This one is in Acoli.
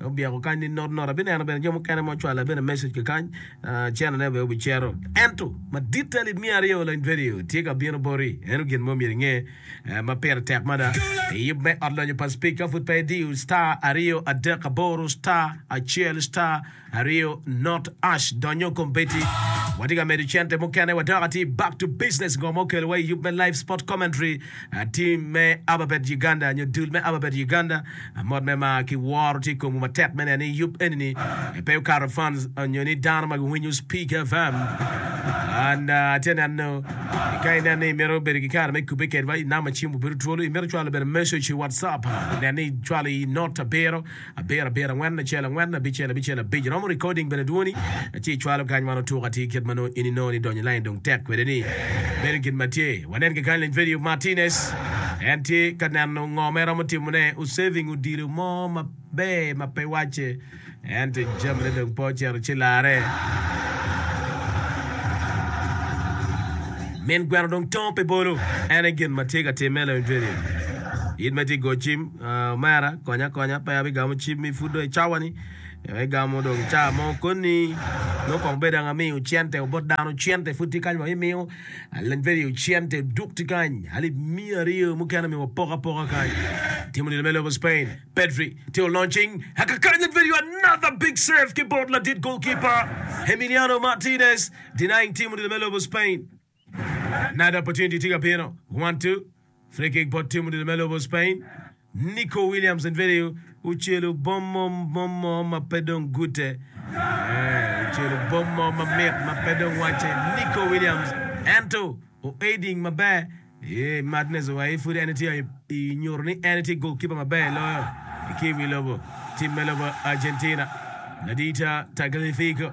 Obyeko kany ni not not. Abineno bene jo mukene ma ocwalo la bene message ki kany. Ah, channel ne obeo bicero. Ento, madit ta lid miya aryo lony vedio tye ka bino boti. Eno gin mo myero inge eh, ma pire tek mada. Iyub me ot lonyo pa speaker pud pe idiyo star aryo adek aboro star acel star aryo not ash donyo kom beti. Watye ka medo cente mukene wadok atir back to business ngo ma okelo wa iyub me live sport commentary. Tim me Ababet Uganda nyo dul me Ababet Uganda, mot me mar ki woro tye i komwu matek me neno ni yub enini pe okato fans nyo ni dano ma giwinyo Speak FM and atye neno ni ka ineno ni imito bedo ki kare me kubbe kedwa i namba cim obed otwolo, imito cwalo bene message i WhatsApp, nen ni icwalo i note abiro. Abiro abiro angwen acel angwen abicel abicel abic romo recording bene dwoni ci icwalo kany man otuk atir kit ma nongo in inongo ni donyo lain dong tek kwede ni bedo kit ma tye wanen kekany leny vedio Martinez en tye ka neno ngo ma en romo timo ne u saving odilo mo ma ber ma pe wacce ento jami ne dong pe ocito ci lare. Min gweno dong tongo pi bolo. Ene gin ma tye ka timme leny vedio. In ma itye go cim. Uh, omera, konya konya, pe abigamo cim mi pud dong icawa ni eh, igamo dong ica mo koni nongo kong bedo ang amiyo cente obot dano cente pud tye kany wa imiyo alin peri yo cente duk tye kany alip miya aryo mukene mi wapok apoka kany timo nino me lobo Spain Pedri timo launching aka kany alin peri yo another big save ki bot ladit goalkeeper Emiliano Martinez denying timo nino me lobo Spain Another opportunity tye ka bino. One, two. Free kick bot tim odilo me lobo Spain. Nico Williams and video ocelo bom mo bom mo ma pe dong gute. Eh, ocelo bom mo ma mit ma pe dong wacce. Nico Williams ento o aiding maber. Eh, Martinez owaye pud en tye i nyuto ni en tye goalkeeper maber loyo ki i wi lobo tim me lobo Argentina. Ladita Tagliafico